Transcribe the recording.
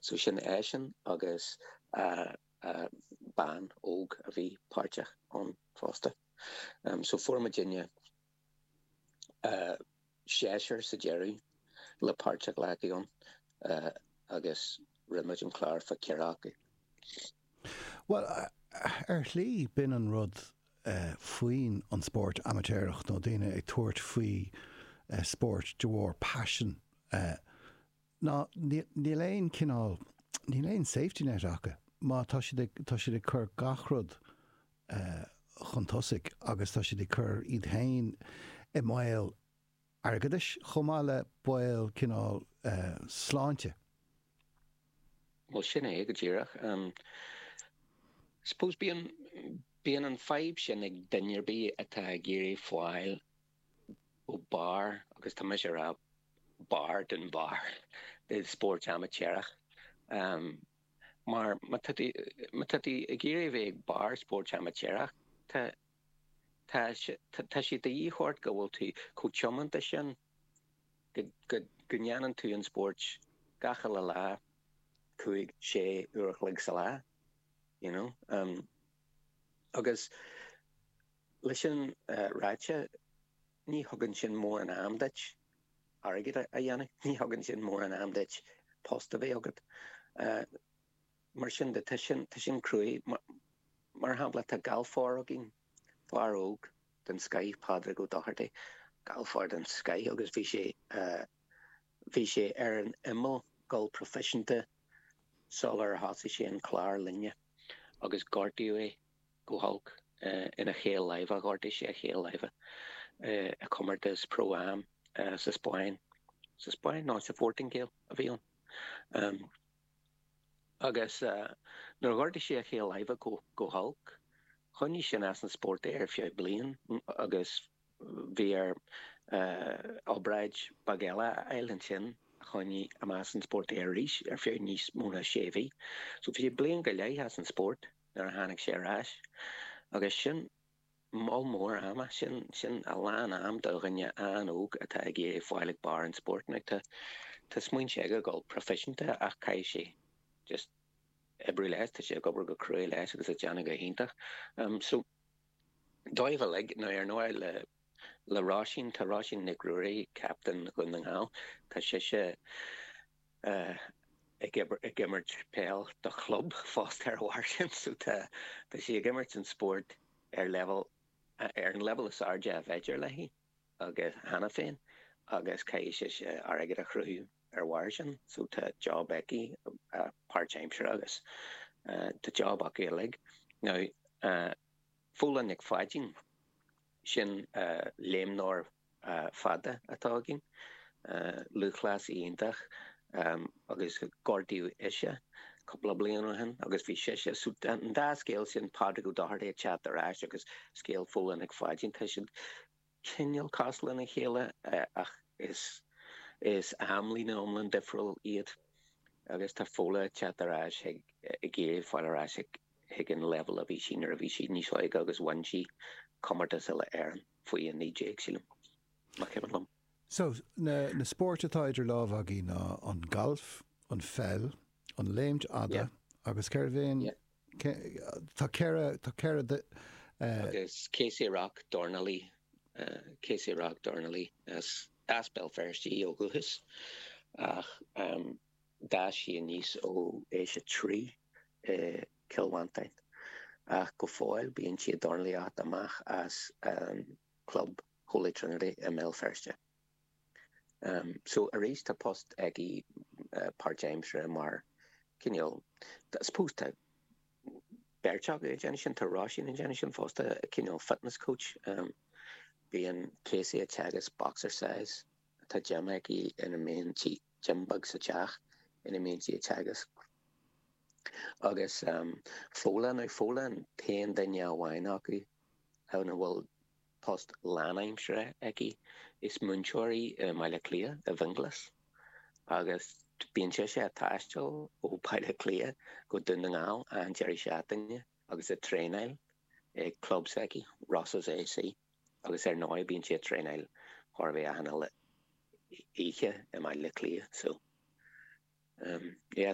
So sin eisean agus bean óg a bhí páirteach ann fosta. So fuair muidinne seisear sa deireadh le páirt a ghlacadh ann agus rinne muid an clár fá ceithre acu. Bhuel, ar shlí, b'in an rud faoin an spóirt amaitéarach nó daoine ag tabhairt faoi spórt de bharr paisin ná níl aon cineál, níl aon safety net acu má tá siad ag, tá siad ag cur gach rud chun tosaigh agus tá siad ag cur iad féin i mbaol airgeadais chomh maith le baol cineál sláinte. Bhuel sin é go díreach. I suppose bíonn, bíonn an fhadhb sin ag duine ar bith atá ag iarraidh fáil, go barr, agus tá mise ag rá barr den bharr, i spórt amaitéarach. Mar má tá tú ag iarraidh a bheith ag barr spóirt amaitéarach tá sé de dhíth ort go bhfuil tú chomh tiomanta sin go ndéanann tú an spórt gach uile lá, cúig, sé, uair a chloig sa lá, you know. Agus. Leis sin ráite, ní thugann sin mórán am duit airgead a dhéanamh, ní thugann sin mórán am duit post a bheith agat. Mar sin de, tá sin, tá sin cruaidh. Mar shampla, tá galfóir againn, fear óg den scoith, Pádraig Ó Dochartaigh, galfóir den scoith agus bhí sé, bhí sé ar an imeall ag gabháil proifisiúnta sular thosaigh sé an clár linne agus gortaíodh é. go holc ina chaol láimhe. Ghortaigh sé a chaol láimhe i gcomórtas Pro Am sa Spáinn, sa Spáinn? No, sa Phortaingéil a bhí ann. Agus nuair a ghortaigh sé a chaol láimhe go holc, choinnigh sin as an spórt é ar feadh bliain agus Bhí air obráid beag eile a fháil ansin a choinnigh amach as an spórt é arís ar feadh níos mó ná sé mhí. So bhí sé bliain go leith as an spórt nuair a tháinig sé ar ais agus sin moll mór ama, sin a lán am do dhuine an-óg atá ag iarraidh fáil ag barr an spóirt. Now tá smaointe aige a dhul proifisiúnta ach caithfidh sé just oibriú leis, tá sé ag obair go cruaidh leis agus ag déanamh go hiontach. So. Dóibh uilig, nó ar ndóigh le Róisín, tá Róisín Nic Ruairí, captaen Dhún na nGall, tá sise ag imirt peile do chlub fosta ar a bharr sin so tá sí ag imirt an spórt ar leibhéal, ar an leibhéal is airde ab fhéidir léi. aige cheana féin agus caithfidh sise airgead a chruthú ar bharr sin so tá job aici páirtaimseartha agus tá job acu uilig. Now Fódhla Nic Pháidín, sin léimneoir fada atá againn, lúthchleasaí iontach. agus gortaíodh ise cúpla bliain ó shin agus bhí sise so tá an dá scéal sin Pádraig Ó Dochartaigh ag teacht ar ais agus scéal Fhódhla Nic Pháidín tá siad cineál cosúil lena chéile ach is amlíne iomlán difriúil iad agus tá Fódhla ag teacht ar ais ag iarraidh fáil ar ais chuig an leibhéal a bhí sí nuair a bhí sí níos óige agus bhain sí comórtas uile Éireann faoi 19 sílim más cuimhin liom. So, na spóirt atá idir lámha againn ná an galf, an pheil, an léim fhada agus céard é an, tá ceithre, tá ceithre. Agus Casey Rock, dornálaí, Casey Rock, dornálaí as, as Béal Feirste í ó dhúchas ach d'fhás sí aníos ó aois a trí i gCill Mhantáin ach go fóill bíonn sí ag dornálaíocht amach as an gclub Holy Trinity i mBéal Feirste. Ehm so arís tá post aici páirtaimseartha mar cineál I suppose tá beirt acu ag déanamh sin, tá Roisín ag déanamh sin fosta, cineál fitness coach. Ehm bíonn Casey ag teagasc boxercise, tá gym aici ina mbíonn sí gym beag sa teach ina mbíonn sí ag teagasc. Agus ehm Fódhla ar Fódhla, an t-aon duine amháin acu a bhfuil post lánaimseartha aici. Is múinteoir í i mBaile Cliath, i bhFionghlas, agus bíonn sise a' taisteal ó Bhaile Cliath go Dún na nGall achan deireadh seachtaine agus a' traenáil ag club s'aici, Rosses A.C. agus ar ndóigh bíonn sí a' traenáil chóir a bheith achan uile oíche i mBaile Cliath so, ehm, yeah.